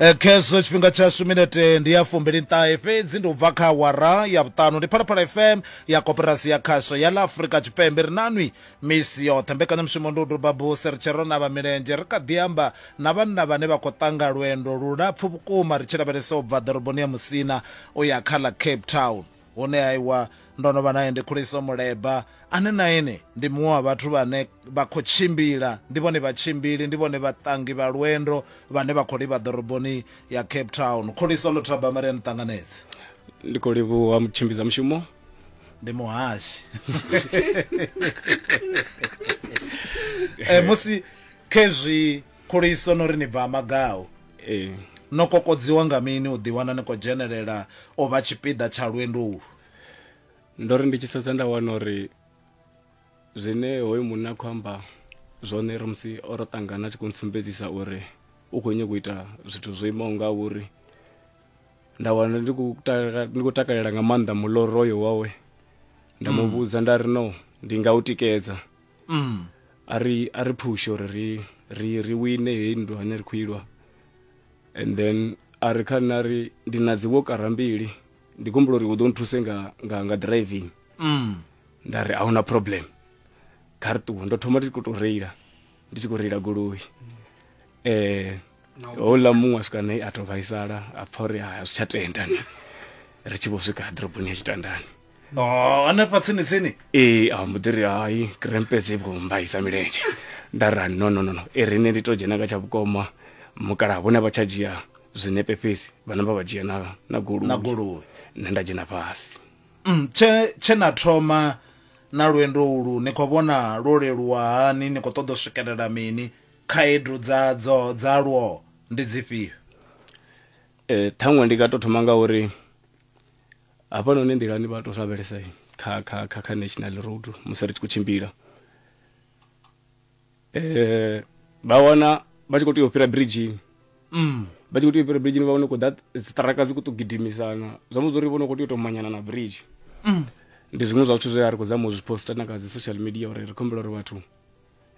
Eh, khezwo tshifhinga tshashu minete ndi ya fumbiliṱahe fhedzi ndi u bva kha awara ya vhuṱanu ndi phalaphala fm ya koperasi ya khasho ya ḽa afurika tshipembe ri nanwi misi yoṱhe mbekanyamushumo ndi u duba buse ri tshi ro navha milenzhe ri kha ḓi amba na vhanna vhane vha khou ṱanga lwendo lulapfu vhukuma ri tshi lavhelesa u bva ḓoroboni ya musina u ya kha ḽa cape town Hune aiwa, ndo no vha nae ndi khuliso muleba, ane na ene ndi muṅwe wa vhathu vhane vha khou tshimbila, ndi vhone vhatshimbili, ndi vhone vhaṱangi vha lwendo vhane vha khou livha ḓoroboni ya Cape Town. Khuliso Luthabama, ri a ni ṱanganedza. Ndi khou livhuwa mutshimbidza mushumo. Ndi muhashi. Eh, musi khezwi Khuliso no ri ni bva Magau. Ee. No kokodziwa nga mini u ḓiwana ni khou dzhenelela u vha tshipiḓa tsha lwendo ulu? Ndo ri ndi tshi sedza nda wana uri zwine hoyu munna a khou amba zwone ri musi o ro ṱangana a tshi khou ntsumbedzisa uri u khou nyanga u ita zwithu zwo imaho nga uri nda wana ndi khou ndi khou takalela nga maanḓa muloroyo wawe nda mu mm. vhudza nda ri no ndi nga u tikedza mm. a ri a ri phushe uri ri ri ri wine heyi nndwa ine ri khou ilwa and then a ri kha nṋe a ri ndi na dzi wokara mbili ndi gombola uri u ḓo nthuse nga nga nga driving mm. nda ri ahuna problem kha ri ṱuwe ndo thoma ndi khou tou reila ndi tshi khou reila goloi eh houḽa muṅwe a swika nae a tou vhaisala a pfa uri a zwi tsha tenda ni ri tshi vho swika ḓoroboni ya tshitandani no hanefha tsini tsini ee a mbo ḓi ri hai krempe dzi vho mbaisa milenzhe nda ra no no no no e rine ndi to dzhena nga tsha vhukoma mukalaha vhone vha tsha dzhia zwinepe fhedzi vhana vha vha dzhia na na goloi na goloi nṋe nda dzhena fhasi Mm, tshe tshe na thoma na lwendo ulu ni khou vhona lwo leluwa hani ni khou ṱoḓa u swikelela mini khaedu dza dzo dza lwo ndi dzifhio Eh, ṱhaṅwe ndi nga to thoma nga uri hafha noni nḓilani vha to lavhelesa kha kha kha kha national road musi ri tshi khou tshimbila eh vha wana vha tshi khou tea u fhira bridgini mm. vha tshi khou tea u fhira bridgini vha wana khou ḓa dziṱaraka dzi khou tou gidimisana zwa mudza uri vho no khou tea u tou manyana na bridge mm. ndi zwiṅwe zwa zwithu zwe a ri khou zama u zwi posta na kha dzi social media uri ri khumbela uri vhathu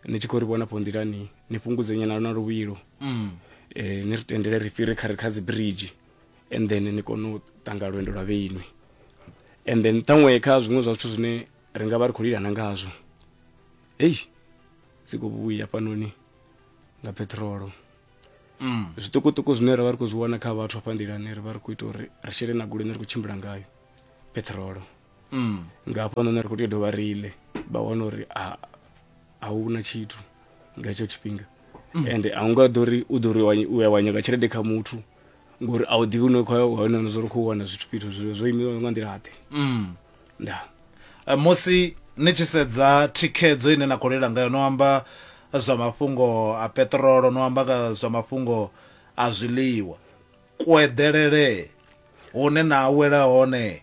ni tshi khou ri vhona fho nḓilani ni fhungudze nyana na luvhilo mm. eh, ni ri tendele ri fhire kha ri kha dzi bridge and then ni kone u tanga lwendo lwa vheinwi and then ṱhaṅwe kha zwiṅwe zwa zwithu zwine ri nga vha ri khou lilana ngazwo eyi si khou vhuya fhanoni nga petrolo mm. zwiṱukuṱuku zwine ra vha ri khou zwi wana kha vhathu hafha nḓilani ri vha ri khou ita uri ri shele na goloi ne ri khou tshimbila ngayo petrolo mm. nga hafho nṋe ri khou tea u dovha riile vha wana uri a hu na tshithu nga hetsho tshifhinga mm. ende a u nga ḓo ri u ḓo ri u ya wanyaka tshelede kha muthu ngori a u ḓivhi une khou hone no zwo ri khou wana zwithu fhethu zwo zwo imiwa nga nḓila ḓe mm. nda eh, musi ni tshi sedza thikhedzo ine na khou lela ngayo no amba zwa mafhungo a peṱirolo no amba zwa mafhungo a zwiḽiwa kueḓelele hune na awela hone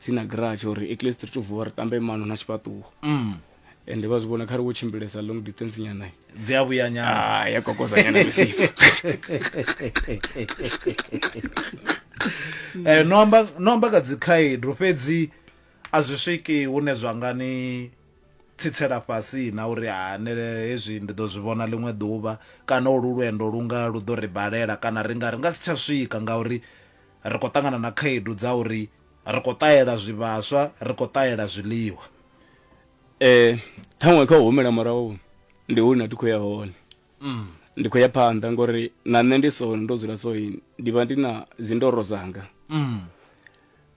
tsini na garage or at least ri to vuwa ri tambe mano na tshifhaṱuwo mm. and vha zwi vhona kha ri wo tshimbilesa long distance nyana dzi a vhuya nyana ah, ya kokoza nyana misifa eh, no amba no amba ka dzikhaedu fhedzi a zwi swiki hune zwa nga ni tsitsela fhasi na uri hanele hezwi ndi ḓo zwi vhona ḽiṅwe ḓuvha kana olu lwendo lu nga lu ḓo ri balela kana ri nga ri nga si tsha swika ngauri Ri khou ṱangana na khaedu dza uri ri khou ṱahela zwivhaswa, ri khou ṱahela zwiḽiwa. Ṱhaṅwe kha u humela murahu ndi hune a thi khou ya hone. Ndi khou ya phanḓa ngori na nṋe ndi so ndo dzula so ndi vha ndi na dzi ndoro dzanga.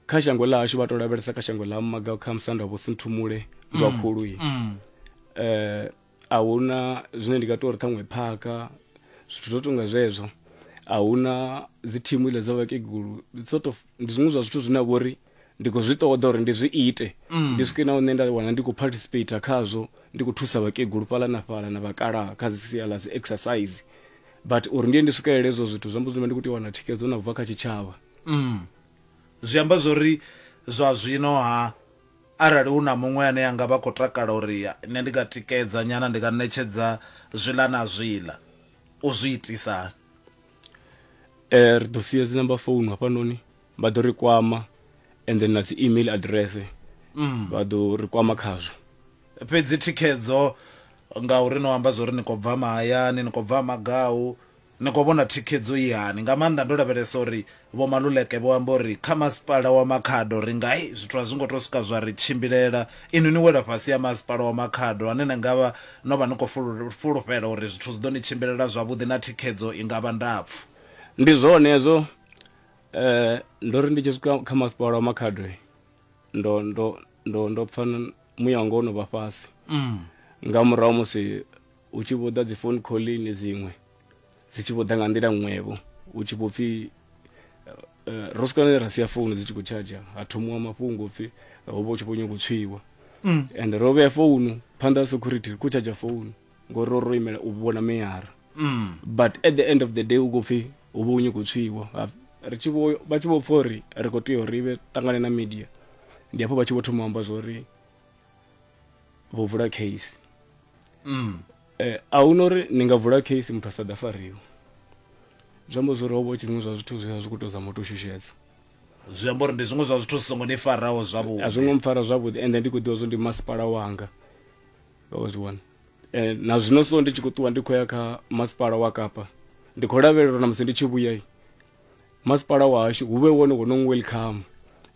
Kha shango ḽa hashu vha to lavhelesa kha shango ḽa Mmaga kha musanda vho Sinthumule Vhakhulu. a hu na zwine ndi nga tou ri ṱhaṅwe phaka zwithu zwo tonga zwezwo a hu na dzi thimu ile dza vhakegulu sort of ndi zwiṅwe zwa zwithu zwine a vhori ndi khou zwi ṱoḓa uri ndi zwi ite mm. ndi swike na hune nda wana ndi khou participate khazwo ndi khou thusa vhakegulu fhala na fhala na vhakalaha kha dzi sia ḽa dzi exercise but uri ndiye ndi swikelele ezwo zwithu zwi amba zwino ndi khou tea u wana thikhedzo na bva kha tshitshavha mm. zwi amba zwori zwa zwino ha Arali hu na muṅwe ane a nga vha khou takala uri nṋe ndi nga tikedza nyana, ndi nga ṋetshedza zwiḽa na zwiḽa, u zwi itisa hani? Eh, ri ḓo sia dzi number phone hafhanoni, vha ḓo ri kwama and then na dzi email address vha ḓo ri kwama khazwo. Fhedzi thikhedzo, ngauri no amba zwori ni khou bva mahayani, ni khou bva ha Magau, Ni khou vhona thikhedzo i hani, nga maanḓa ndo lavhelesa uri Vho Maluleke vho amba uri kha Masipala wa Makhado ri nga hey, zwithu a zwi ngo tou swika zwa ri tshimbilela. Inwi ni wela fhasi ha Masipala wa Makhado ane ni nga vha no vha ni khou fhulufhela uri zwithu zwi ḓo ni tshimbilela zwavhuḓi na thikhedzo i nga vha ndapfu. Ndi zwone hezwo, ndo ri ndi tshi swika kha Masipala wa Makhado ndo, ndo, ndo, ndo pfa muya wanga wo no vha fhasi nga murahu ha musi. Hu tshi vho ḓa dzi phone khoḽini dziṅwe dzi tshi vho ḓa nga nḓila ṅwevho hu tshi vho pfhi ro swika ne ra sia founu dzi tshi khou tshadzha ha thomiwa mafhungo pfhi ho vha hu tshi vho nyanga u tswiwa mm. and ro vhea founu phanḓa ha security ri khou tshadzha founu ngori ro ro imela u vhona meyara mm. but at the end of the day u khou pfhi hu vha hu nyanga u tswiwa ri tshi vho vha tshi vho pfha uri ri khou tea uri vhe ṱangane na media ndi hafho vha tshi vho thoma u amba zwa uri vho vula case mm. eh, a hu na uri ni nga vula case muthu a sa ḓa fariwa zwi amba zwori ho vha tshi zwiṅwe zwa zwithu zwi zwi khou tou zama u tou shushedza zwi amba uri ndi zwiṅwe zwa zwithu zwi songo ni faraho zwavhuḓi a zwi ngo mpfara zwavhuḓi ende ndi khou ḓivha zwo ndi masipala wanga wa zwi wana eh, na zwino so ndi tshi khou ṱuwa ndi khou ya kha masipala wa kapa ndi khou lavhelela uri na musi ndi tshi vhuya Masipala wahashu hu vhe wone wo no welcome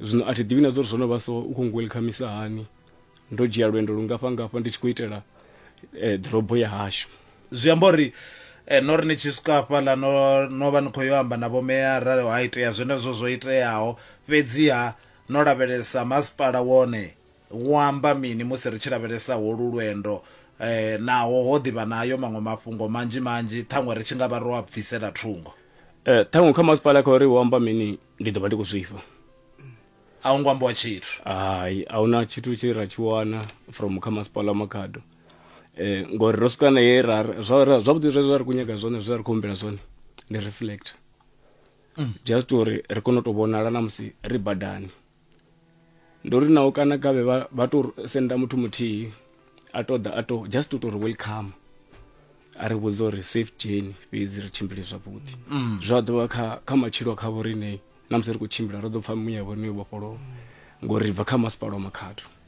zwino a thi ḓivhi na zwa uri zwo no vha so u khou welcomisa hani ndo dzhia lwendo lungafha ngafha ndi tshi khou itela eh, ḓorobo ya hashu zwi amba uri eh, no ri ni tshi swika hafhaḽa no no vha ni khou yo amba na vhomeyara ha itea zwenezwo zwo iteaho fhedziha no lavhelesa masipala wone Wo amba mini musi ri tshi lavhelesa holu lwendo? Naho ho ḓi vha na ayo maṅwe mafhungo manzhi manzhi, ṱhaṅwe ri tshi nga vha ro a bvisela thungo. Ṱhaṅwe kha masipala kha uri, Wo amba mini? Ndi ḓo vha ndi khou zwifha. A hu ngo ambiwa tshithu. Hai, a hu na tshithu tshe ra tshi wana from kha masipala wa Makhado ngori ro swika na he ra zwavhuḓi zwe zwa ri khou nyaga zwone, zwe ra ri khou humbela zwone ndi reflector just uri ri kone u tou vhonala na musi ri badani. ndi uri naho kana kavhe vha, vha to senda muthu muthihi a to ḓa a to just u to ri welcome a ri vhudza uri safe journey fhedzi ri tshimbile zwavhuḓi mm. zwa ḓovha kha kha matshilo kha vho riṋe na musi ri khou tshimbila ro ḓo pfha muya vhone vhofholowa ngori ri bva kha masipala wa makhado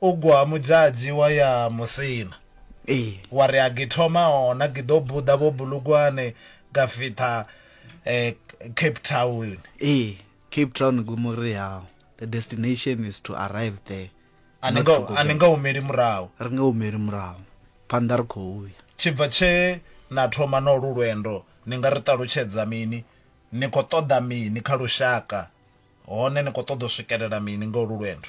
u gwa ha mudzhadzi wa ya musina ee wa ri a githoma hona giḓo buḓa vho bulugwane ga fitha eh, cape town ee cape town gumuri yao the destination is to arrive there a ni not to nga- go a ni back. nga humeli murahu ri nga humeli murahu phanḓa ri khou ya tshibva tshe na thoma na olu lwendo ni nga ri ṱalutshedza mini ni khou ṱoḓa mini kha lushaka hone ni khou ṱoḓa u swikelela mini nga olu lwendo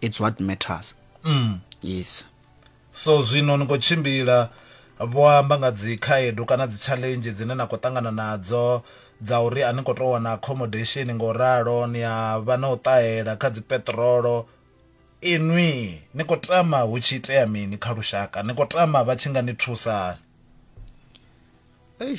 it's what matters mm. yes so zwino ni khou tshimbila vho amba nga dzi khaedu kana dzi challenge dzine na khou ṱangana nadzo dza uri a ni khou tou wana accommodation nga u ralo ni a vha na u ṱahela kha dzi peṱirolo inwi ni khou tama hu tshi itea mini kha lushaka ni khou tama vha tshi nga ni thusa hani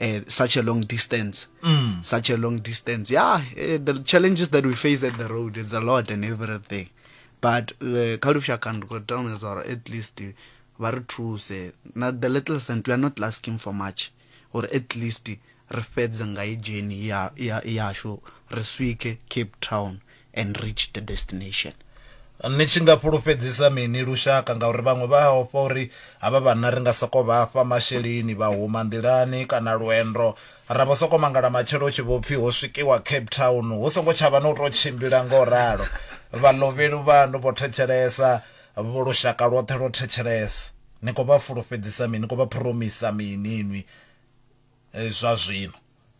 uh, such a long distance mm. such a long distance yeah uh, the challenges that we face at the road is a lot and everything but eh, kha lushaka ndi khou tana zwa uri at least vha ri thuse na the little cent we are not asking for much or at least ri fhedze nga i dzheni yashu ri swike cape town and reach the destination ni tshi nga fhulufhedzisa mini lushaka ngauri vhaṅwe vha ofha uri havha vhanna ri nga soko vha fha masheleni vha huma nḓilani kana lwendo ra vho soko mangala matshelo tshi vho pfhi ho swikiwa Cape Town hu songo tshavha na u tou tshimbila ngo ralo vhalovheli vhanu vho thetshelesa vho lushaka lwoṱhe lwo thetshelesa ni khou vha fhulufhedzisa mini ni khou vha phuromisa mini inwi eh, zwa zwino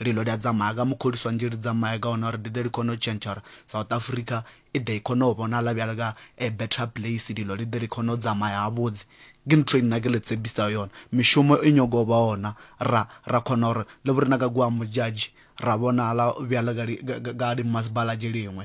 Lilo ḽia dzamaga mukholiswa nzhi ḽi dzamaga hu nori ḽi ḓe ḽi kone u tshentsha uri South Africa i ḓe i kone u vhonala vhuya nga a better place ḽi ḽi ḓe ḽi kone u dzama ya vhuḓi ndi nthu ine nda kha ḽi tshepisaho yone mishumo i nyaga u vha hone ra ra kona uri ḽi vhori na nga guambu dzhadzhi ra vhonala vhuya ḽa nga ḽi masipala ḽiṅwe.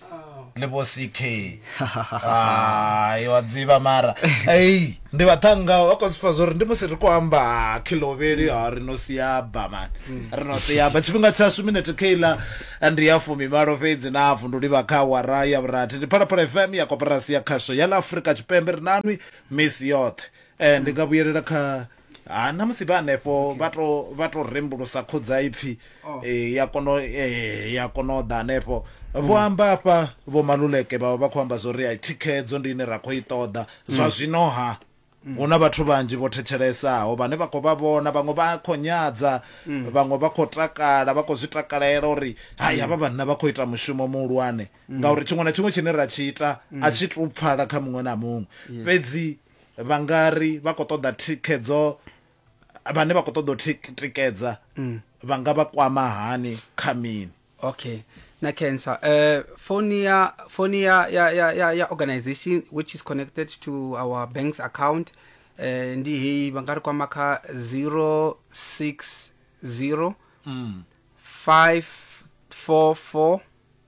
le vho ck hayi wa dziva mara ei ndi vhaṱhanga vha khou sifa zwo uri ndi musi ri khou amba ha khilovheli ha ri no siaba mani ri no siaba tshifhinga tshashu minete keiḽa ndi ya fumi malo fhedzi na hafu ndi livha kha awara ya vhurathi ndi phalaphala fm ya koporasi ya khasho ya ḽa afurika tshipembe ri nanwi misi yoṱhe um ndi nga vhuyelela kha ha na musi vha hanefho vha to vha to rembulusa khudzaipfi oh. eh, ya kono eh, ya kono ḓa hanefho mm. vho amba afha vho maluleke vha vha khou amba zwori ai thikhedzo ndi ine ra khou i ṱoḓa zwa mm. zwino ha mm. huna vhathu vhanzhi vho thetshelesaaho vhane vha khou vha vhona vhaṅwe vha khou nyadza vhaṅwe vha khou takala vha khou zwi takalela uri hai havha vhanna vha khou ita mushumo muhulwane ngauri tshiṅwe na tshiṅwe tshine ra tshi ita a tshi tu pfala kha muṅwe na muṅwe fhedzi yes. vha nga ri vha khou ṱoḓa thikhedzo vhane vha khou ṱoḓa u tikedza mm. vha nga vha kwama hani kha mini okay na cancer uh, phone ya phone ya ya ya ya organization which is connected to our bank's account uh, ndi heyi vha nga ri kwama kha 060 mm. 544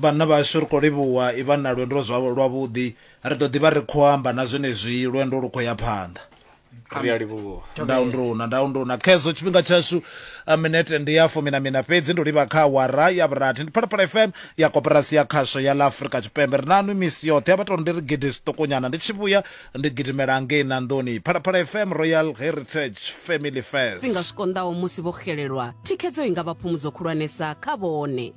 Vhanna vhashu ri khou livhuwa i vha na lwendo zwa lwavhuḓi. Ri ḓo ḓi vha ri khou amba na zwenezwi lwendo lu khou ya phanḓa. Ri a livhuwa. Ndau nduna, ndau nduna. Khezwo tshifhinga tshashu minete ndi ya fumi na miṋa fhedzi. Ndi u livha kha awara ya vhurathi. Ndi Phalaphala FM ya Koporasi ya Khasho ya ḽa Afrika Tshipembe. Ri naṋwi misi yoṱhe. Ha vha tou ri ndi ri gidi zwiṱukunyana. Ndi tshi vhuya ndi gidimela ngei Nanḓoni. Phalaphala FM, Royal Heritage, Family First. Zwifhinga zwi konḓaho musi vho xelelwa, thikhedzo i nga vha phumudzo khulwanesa kha vhone.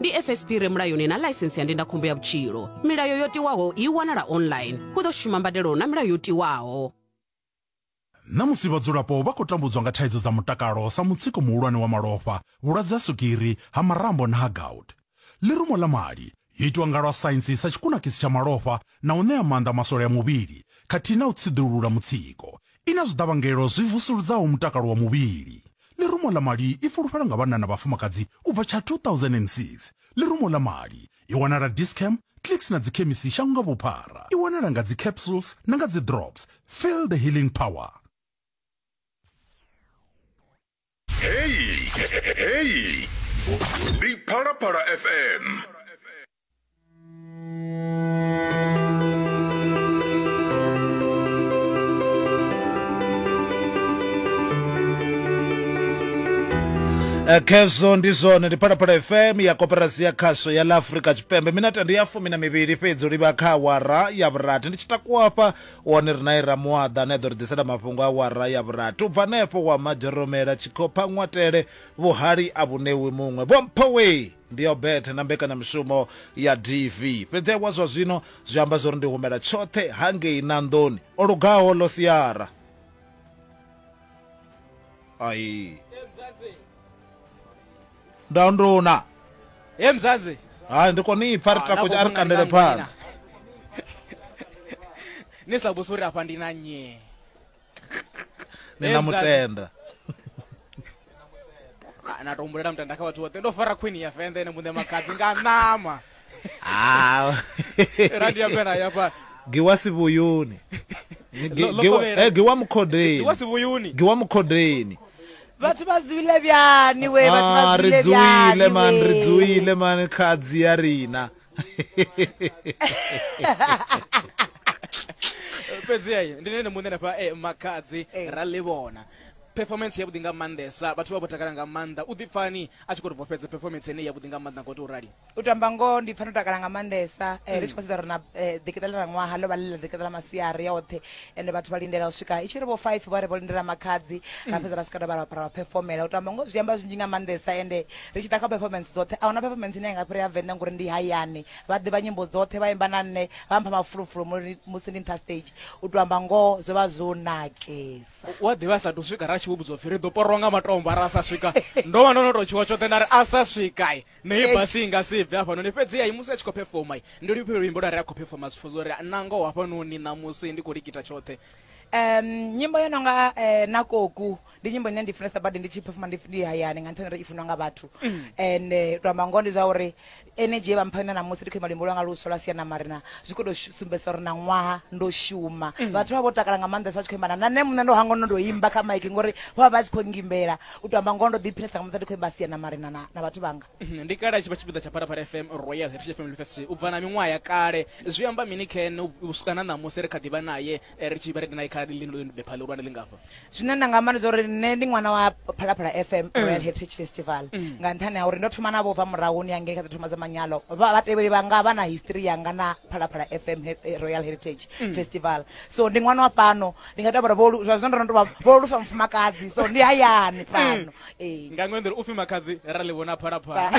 ndi fsp re mulayoni na ḽaisensi ya ndindakhombo ya vhutshilo milayo yo tiwaho i wanala online hu ḓo shuma mbadelo na milayo yo tiwaho Ṋamusi vhadzulapo vha khou tambudzwa nga thaidzo dza mutakalo sa mutsiko muhulwane wa malofha, vhulwadze ha swigiri, ha marambo na ha gout. Ḽirumo ḽa mali, yo itwa nga lwa saintsi sa tshikunakisi tsha malofha na u ṋea maanḓa maswole a muvhili khathihi na u tsiḓulula mutsiko, I na zwiḓavhangelo zwi vusuludzaho mutakalo wa muvhili. Ḽirumo ḽa mali i fulufhela nga vhanna na vhafumakadzi u bva tsha 2006. Ḽirumo ḽa mali i wanala Dis-Chem, Clicks na dzikhemisi shango nga vhuphara. I wanala nga dzi capsules na nga dzi drops. Feel the healing power. Heyi, heyi. Ndi Phalaphala FM. Eh, khezwo ndi zwone ndi phalaphala fm ya koperasi ya khasho ya la afrika tshipembe minete ndi ya fumi na mivhili fhedzi u livha kha awara ya vhurathi ndi tshi takuwa hafha Wone ri nae Ramuwaḓa ane a ḓo ri ḓisela mafhungo a awara ya vhurathi. U bva hanefho wa Madzhoromela, Tshikhopha, Ṅwatele, Vhuhali a vhu ṋewi muṅwe. Vho mpho wee! Ndi ya u betha na mbekanyamushumo ya DV. Fhedzi wa zwa zwino zwi amba zwa uri ndi humela tshoṱhe hangei Nanḓoni. O lugaho ḽo siara. Ai. ndo nduna he mzanzi hayi ndi kone ipfa ri takotsha a ri kandele phanḓa ni sa vhusi uri afha ndi na nye ni na mutenda na to humbulela mutenda kha vhathu vhoṱhe ndo fara khwini ya fende ene muṋe makhadzi nga ṋama ah. randi ya mera ya fha giwa sivuyuni eh, giwa mukhodeni giwa sivuyuni giwa mukhodeni vhathu vha zwile byani we vhathu vha ah, zwile byani ri man ri dzuile man khadzi ya rina fhedzi ayi ndi nene muṋe nafha eh, makhadzi eh. ra ḽi vhona performance ya vhuḓi nga maanḓesa vhathu vha vho takala nga maanḓa u ḓipfani a tshi khou ri vhofhedza performance ene ya vhuḓi nga maanḓa ngo to rali u to amba ngoho ndi pfa ndo takala nga maanḓesa eh, ri tshi khou sedza uri na eh, ḓikita ḽa ṅwaha ḽo vha ḽi ḽa ḓikita ḽa masiari oṱhe ende vhathu vha lindela u swika i tshi ri vho five vha ri vho lindela makhadzi ra fhedza ra swika ra vha ra vha ra phefomela u to amba ngoho zwi amba zwinzhi nga maanḓesa ende ri tshi ḓa kha performance dzoṱhe a huna performance ine ya nga fhira ya venḓa ngori ndi hayani vha ḓivha nyimbo dzoṱhe vha imba na nṋe vha mpha mafulufulu muri- musi ndi nṱha stage u to amba ngoho zwo vha zwo nakesa wa ḓivha a sa tou swika ra tshi vho vhudzwa pfhi ri ḓo porwa nga matombo ara a sa swika ndo vha ndo no tou tshiwa tshoṱhe nda ri a sa swika naye Eish. basi inga si bve hafhanoni fhedzi ai musi a tshi khou pefoma ndi lifhio luimbo lwa re a khou pefoma zwi pfhudza uri nangoho hafhanoni ṋamusi ndi khou likita tshoṱhe um nyimbo yo nonga eh, na koku ndi nyimbo ine ndi funesa badi ndi tshi phefuma ndi ndi hayani nga nṱhani uri i funwa nga vhathu and eh, to amba ngoho ndi zwa uri energy ye vha mpha yone namusi ndi khou ima luimbo lwanga luswa lwa siana marina zwi khou tou shu- sumbedzisa uri na ṅwaha ndo shuma vhathu vha vho takala nga maanḓesa vha tshi khou imba na na nṋe muṋe ndo hangono ndo imba kha maiki ngori vho vha vha tshi khou ngimbela u tou amba ngoho ndo ḓiphilesa nga muṱa ndi khou imba sia na marina na, na vhathu vhanga mhm, ndi kale a tshi vha tshipiḓa tsha phalaphala fm royal heritage family festival u bva na miṅwaha ya kale zwi amba mini ken u swika na ṋamusi ri kha ḓivha naye eh, ri tshi vha redi naye kha lindobepha ḽihulwane ḽi ngafha zwine nda nga amba ndi zwa uri nṋe ndi ṅwana wa phalaphala fm mm. royal heritage festival mm. nga nṱhani ha uri ndo thoma navho bva murahuni ya ngei kha ḓo thoma dza manyalo vhatevheli vhanga vha na history yanga na phalaphala fm eh, royal heritage mm. festival so ndi ṅwana wa fhano ndi nga tabara vholu zwa zwino ndo ndo vha vholu sa mufumakadzi so ndi hayani fhano eh nga ṅwe nḓila upfi makhadzi ra ḽi vhona phalaphala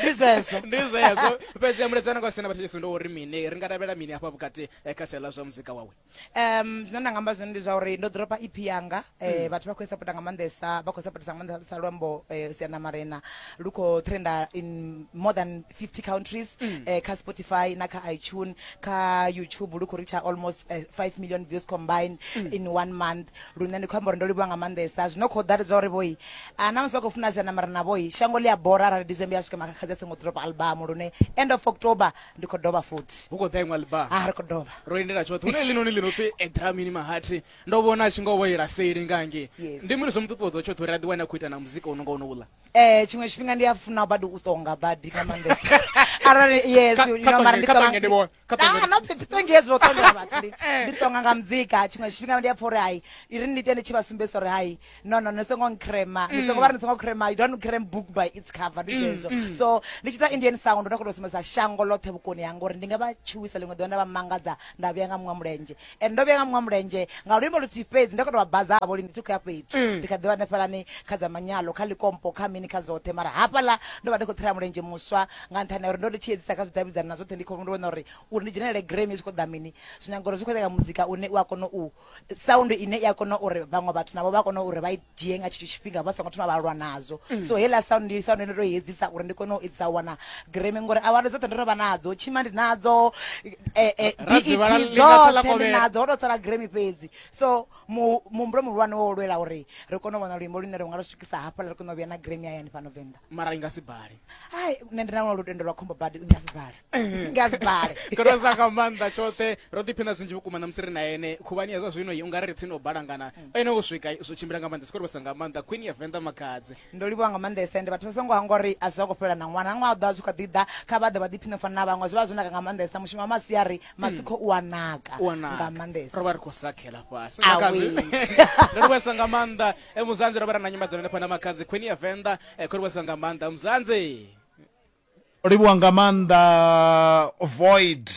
ndi zwezwo ndi zwezwo fhedzi ya muledzana kwa sina vhathetshelesi ndo uri mini ri nga tavhela mini hafha vhukati eh, kha sia ḽa zwa muzika wawe um zwine nda nga amba zwone ndi zwa uri ndo ḓoropa ep yanga eh, vhathu vha khou i sapota nga maanḓesa vha khou sapotesa nga maanḓesa luambo eh, siana marena lu khou trenda in more than 50 countries mm. eh, kha spotify na kha itune kha youtube lu khou reacha almost eh, 5 million views combined mm. in one month lune ndi khou amba uri ndo livhuwa nga maanḓesa zwino khou ḓa zwa uri vhoi a ah, na musi vha khou funa siana mara na vhoi shango ḽi a bora arali december ya swika makhakhazi a songo drop album lune end of october ndi khou dovha futhi hu khou ḓa iṅwe album a ah, ri khou dovha ro endela tshoṱhe hune ḽinoni ḽino pfi edramini mahati ndo vhona a tshi ngo vhoyela seli ngange ndi mini zwo mu ṱuṱuwedza tshoṱhe uri a ḓiwane a khou ita na muzika u no nga uno uḽa eh tshiṅwe tshifhinga ndi a funa badi u tonga badi nga maanḓesa arali yes Ka- you ka know, mara tonge- ndi ka tonga- tonge ndi vhone, ka tonge Ah, ndi- not to- to tonge yes, no tonge vhathu, ndi- ndi tonga nga muzika tshiṅwe tshifhinga ndi a pfa uri hai iri ni ite ni tshi vha sumbedzisa uri hai no no ni songo nkrema ni songo vha ri ni songo krema you don't crem book by its cover ndi zwezwo so ndi tshi ita indian sound ndo kona u sumbedza shango ḽoṱhe vhukoni hanga uri ndi nga vha tshuwisa ḽiṅwe ḓuvha nda vha mangadza nda vhuya nga muṅwe mulenzhe and ndo vhuya nga muṅwe mulenzhe nga luimbo luthihi fhedzi ndo kha to vha baza havho lini thi khou ya fhethu mm. ndi kha ḓivha hanefhalani kha dza manyalo kha likompo kha mini kha dzoṱhe mara hafhaḽa ndo vha ndi khou thela mulenzhe muswa nga nṱhani ya uri ndo ndi tshi edzisa kha zwidavhidzani na zwoṱhe ndi khou ndi vhona uri uri ndi dzhenelele grami zwi khou ḓa mini zwi nyanga uri zwi khou nyanga muzika une u a kona u sound ine i a kona uri vhaṅwe vhathu navho vha kona uri vha i dzhie nga tshetsho tshifhinga vha songo thoma vha lwa nazwo mm. so heila sound ndi sound ndo i edzisa uri ndi kone u edzisa wana greme ngori award dzoṱhe ndo ro vha nadzo tshima ndi nadzo eh, eh, bet dzoṱhe ndi nadzo ho to sala greme fhedzi so muhumbulo muhulwane wo lwela uri ri kone u vhona luimbo lune ri nga lu swikisa hafhaḽa ri kone u vhuya na greme hayani fhano venḓa mara i nga si bale hai nṋe ndi na lutendo lwa khombo badi i nga si bale nga dzibale koro sa nga maanḓa tshoṱhe ro ḓiphina zwinzhi vhukuma na musi ri na ene khuvhani ya zwa zwino i unga ri tsini o balangana mm. ene u swika zwo tshimbila nga maanḓa sikorivhesa nga maanḓa queen ya venḓa makadzi ndo livhiwa nga maanḓesa ende vhathu vha songo hangwa uri a zwi fhela na ṅwana ṅwaha ḓo a zwi kha ḓi ḓa kha vha ḓe vha ḓiphine fana na vhaṅwe zwi vha zwo naka nga maanḓesa mushumo wa masiari mm. matsiko u a naka nga maanḓesa ro vha ri khou sakhela fhasi makadzi ndo livhesa nga maanḓa e, muzanzi ro vha ra na nyimadzano henefha na makadzi queen ya venḓa e, khorivhesa nga maanḓa muzanzi o livhuwa nga maanḓa void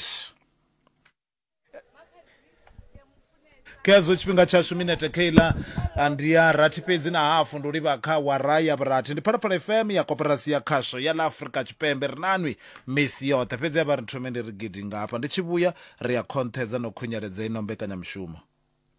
khezwo tshifhinga tshashu minete keiḽa ah, ndi ya rathi fhedzi na hafu ndi u livha kha wara ya vhurathi ndi phalaphala fm ya koperasi ya khasho ya ḽa afrika tshipembe ri nanwi misi yoṱhe fhedzi a vha ri thome ndi ri gidi ngafha ndi tshi vhuya ri a khonṱhedza no khunyeledza ino mbekanyamushumo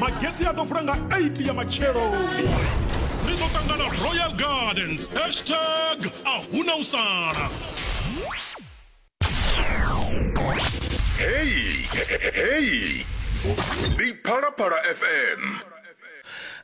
magete a ḓo vula nga 8 ya matshelo ri ḓo ṱangana royal gardens hashtag a huna u sala heyi heyi ndi phalaphala fm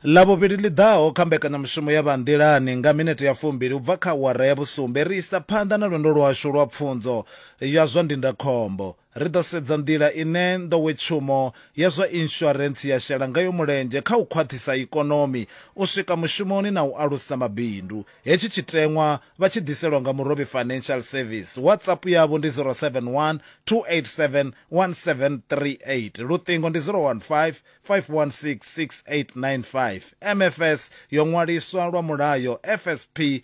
lavhuvhili ḽi ḓaho kha mbekanyamushumo ya vhanḓilani nga minete ya fumbili u bva kha awara ya vhusumbe ri isa phanḓa na lwendo lwashu lwa pfunzo ya zwa ndindakhombo Ri ḓo sedza nḓila ine nḓowetshumo ya zwa inshurentsi ya shela ngayo mulenzhe kha u khwaṱhisa ikonomi, u swika mushumoni na u alusa mabindu. Hetshi tshiteṅwa vha tshi ḓiselwa nga Murobi Financial Service. WhatsApp yavho ndi 0712871738, luṱingo ndi 0155166895. MFS yo ṅwaliswa lwa mulayo FSP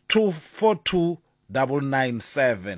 242997.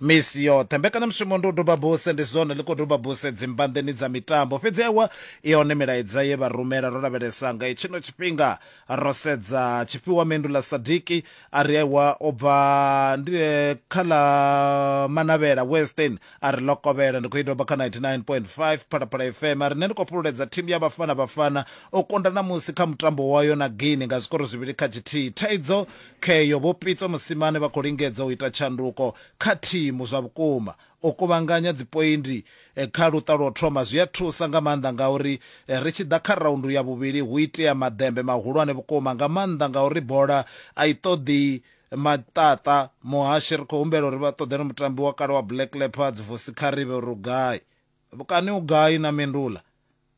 Misi yoṱhe mbekanyamushumo ndi u duba buse, ndi zwone ḽi khou duba buse dzimbanḓeni dza mitambo. Fhedzi ewa i hone milaedza ye vha rumela. Ro lavhelesa nga hetshino tshifhinga, ro sedza tshifhiwa mendu ḽa Sadiki a ri ewa u bva ndi kha ḽa Manavhela Western a ri ḽo kovhela. Ndi khou i doba kha 99.5 Phalaphala FM a ri nṋe ndi khou fhululedza thimu ya Bafana Bafana u kunda ṋamusi kha mutambo wayo na Guinea nga zwikoro zwivhili kha tshithihi. Thaidzo Kheyo, Vho Pitso Mosimane vha khou lingedza u ita tshanduko kha thimu zwa vhukuma. U kuvhanganya dzipoindi kha luṱa lwa u thoma zwi a thusa nga maanḓa ngauri ri tshi ḓa kha raundu ya vhuvhili hu itea maḓembe mahulwane vhukuma nga maanḓa ngauri bola a i ṱoḓi maṱaṱa. Muhashi, Ri khou humbela uri vha ṱoḓele mutambi wa kale wa Black Leopards, Vusi Kgarebe uri u gai? Vhukani u gai na Mindula?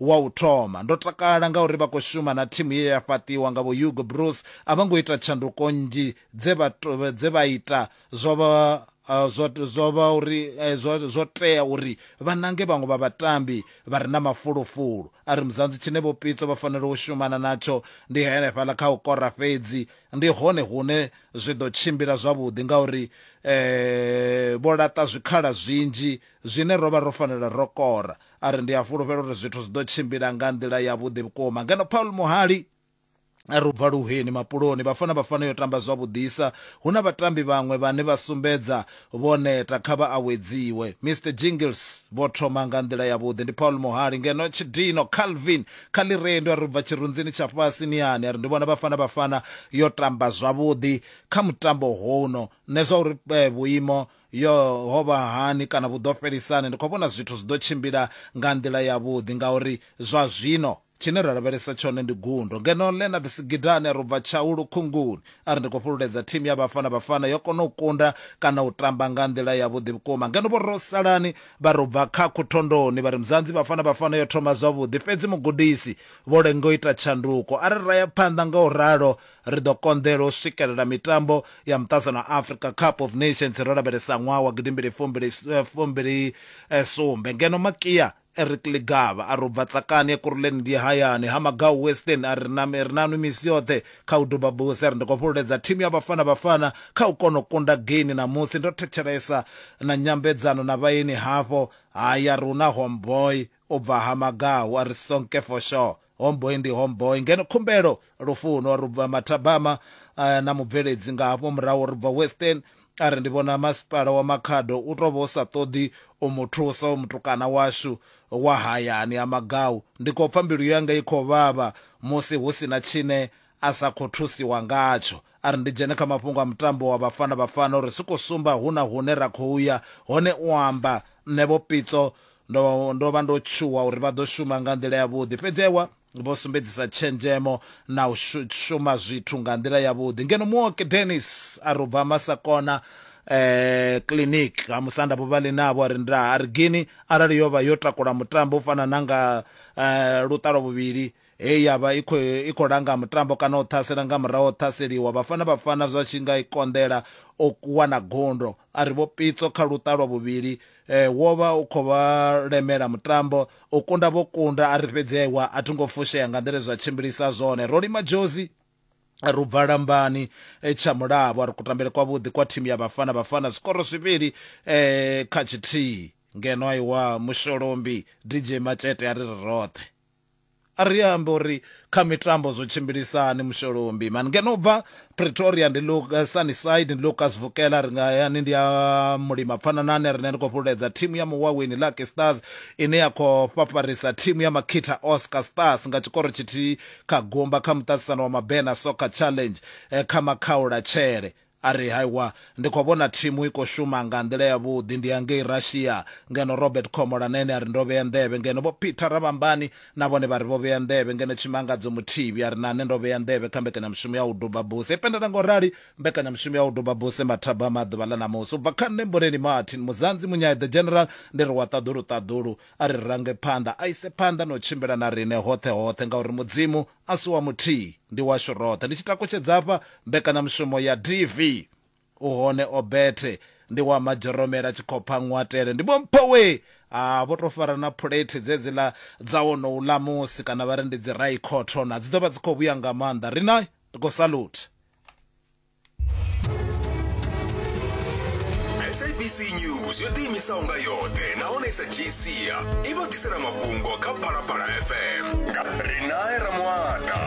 Wa u thoma. Ndo takala ngauri vha khou shuma na thimu ye ya fhaṱiwa nga Vho-Hugo Broos. A vho ngo ita tshanduko nnzhi dze vha dze vha ita, zwo vha zwo zwo vha uri zwo zwo tea uri vha nange vhaṅwe vha vhatambi vha re na mafulufulu. A ri Muzanzi tshine Vho Pitso vha fanela u shumana natsho ndi henefhaḽa kha u kora fhedzi, ndi hone hune zwi ḓo tshimbila zwavhuḓi ngauri vho laṱa zwikhala zwinzhi zwine ro vha ro fanela ro kora. A ri, Ndi a fhulufhela uri zwithu zwi ḓo tshimbila nga nḓila yavhuḓi vhukuma. Ngeno Paul muhali a ri, U bva luheni, mapuloni, Bafana Bafana yo tamba zwavhuḓisa. Hu na vhatambi vhaṅwe vhane vha sumbedza vho neta, kha vha awedziwe. Mister Jingles vho thoma nga nḓila yavhuḓi. Ndi Paul muhali. Ngeno Tshidino Calvin kha Ḽirendu a ri, U bva tshirunzini tsha fhasi ni hani? A ri, Ndi vhona Bafana Bafana yo tamba zwavhuḓi kha mutambo houno. Nṋe zwa uri vhuimo Yo, ho vha hani kana vhu ḓo fhelisa hani? Ndi khou vhona zwithu zwi ḓo tshimbila nga nḓila yavhuḓi, ngauri zwa zwino tshine ra lavhelesa tshone ndi gundo. Ngeno Leonard Sigidane a ri u bva tshau lukhunguni, a ri ndi khou fhululedza thimu ya Bafana Bafana yo kona u kunda kana u tamba nga nḓila yavhuḓi vhukuma. Ngeno Vho Rosalani vha ri u bva Khakhu Thondoni vha ri Mzanzi Bafana Bafana yo thoma zwavhuḓi, fhedzi mugudisi vho lenga u ita tshanduko. A ri ra ya phanḓa nga u ralo Ri ḓo konḓelwa u swikelela mitambo ya Muṱazano wa Afrika Cup of Nations ro lavhelesa ṅwaha wa gidi mbili fumbili fumbili sumbe ngeno Makia Eric Ligaba a ri u bva Tsakani Ekurhuleni ndi hayani ha Magau Western a ri na ri nanwi misi yoṱhe kha u duba buse ri ndi khou fhululedza thimu ya Bafana Bafana kha u kona u kunda geini ṋamusi ndo thetshelesa na nyambedzano na vhaeni hafho haya ri hu na homeboy u bva ha Magau a ri sonke for sure Homeboy ndi homeboy ngeno khumbelo lufuno ri bva mathabama eh, na mubveledzi nga hafho murahu ri bva western a ri ndi vhona masipala wa makhado u tou vha u sa ṱoḓi u mu thusa u mutukana washu wa hayani ha magau ndi khou pfa mbilu yanga i khou vhavha musi hu si na tshine a sa khou thusiwa ngatsho a ri ndi dzhene kha mafhungo a mutambo wa vhafana vhafana uri si khou sumba hu na hune ra khou ya hone u amba nṋe vho pitso ndo ndo vha ndo tshuwa uri vha ḓo shuma nga nḓila yavhuḓi fhedzi ewa vho sumbedzisa tshenzhemo na u shuma zwithu nga nḓila yavhuḓi ngeno muoki dennis a ri u bva masakona eh clinic ha musanda vho vha ḽi navho ri nda a ri gini arali yo vha yo takula mutambo u fana na nga eh, luṱalo vhuvhili Hei ya vha i khou i khou langa mutambo kana u ṱhasela nga murahu ha u ṱhaseliwa. Vhafana Bafana zwa tshi nga i konḓela u wana gundo, a ri vho Pitso kha luṱa lwa vhuvhili eh, wo vha u khou vha lemela mutambo. U kunda vho kunda, a ri fhedzi aiwa a thi ngo fushea nga nḓila zwa tshimbilisa zwone. Ro lima dzhozi ri bva lambani eh, tsha mulabo a ri kutambele kwavhuḓi kwa thimu ya Bafana Bafana zwikoro zwivhili eh, kha tshithihi ngeno aiwa musholombi DJ Matshete a ri ri roṱhe A ri ambe uri kha mitambo zwo tshimbilisa hani Musholombi man. Ngeno u bva Pretoria ndi Luc, Sunnyside, ndi Lucas Vukela a ri nga hayani ndi a mulima Pfananani riṋe ri khou fhululedza thimu ya Muwaweni Lucky Stars ine ya khou fhafharisa thimu ya Makita Oscar Stars nga tshikoro tshithihi kha gumba kha muṱaṱisano wa Mabena Soccer Challenge kha Makhaulatshele A ri, Haiwa, ndi khou vhona thimu i khou shuma nga nḓila yavhuḓi. Ndi ya ngei Russia. Ngeno Robert Khomolanene a ri, Ndo vhea nḓevhe. Ngeno Vho Peter Ravhambani na vhone vha ri vho vhea nḓevhe. Ngeno Tshimangadzo Muthivhi a ri, Na nṋe ndo vhea nḓevhe kha mbekanyamushumo ya u duba buse. I pendelwa nga u rali mbekanyamushumo ya u duba buse mathabama a ḓuvha ḽa ṋamusi. U bva kha nṋe Mboleni Martin Muzanzi Munyai the General, ndi ri wa ṱaḓulu ṱaḓulu. A ri range phanḓa, a ise phanḓa na u tshimbila na riṋe hoṱhe hoṱhe, ngauri Mudzimu a si wa muthihi, ndi washu roṱhe. Ndi tshi takutshedza hafha, mbekanyamushumo ya DV, u hone Obethe, ndi wa Madzhoromela, Tshikhopha, Nngwatele, ndi Vho Mpho we a vho tou fara na phulethi dzedziḽa dza wonouḽa musi, kana vha ri ndi dzi Rye Cotton, a dzi ḓo vha dzi khou vhuya nga maanḓa. Ri na, ri khou salutha. sabc news yo ḓiimisaho nga yoṱhe nahone sa gcia i vha ḓisela mafhungo kha phalaphala fm nga ri nae ramuata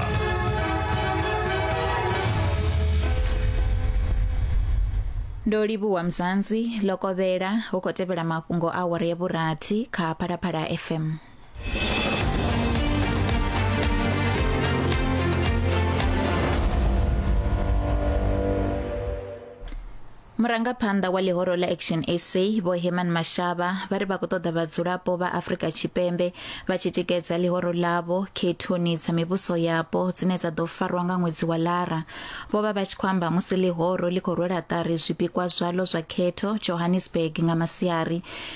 ndo livhuwa mzansi lokovhela hu khou tevhela mafhungo a awara ya vhurathi kha phalaphala fm murangaphanḓa wa ḽihoro ḽa action sa vho heman mashaba vha ri vha khou ṱoḓa vhadzulapo vha afrika tshipembe vha tshi tikedza ḽihoro ḽavho khethoni dza mivhuso yapo dzine dza ḓo farwa nga ṅwedzi wa lara vho vha vha tshi khou amba musi ḽihoro ḽi khou rwela ṱari zwipikwa zwalo zwa khetho johannesburg nga masiari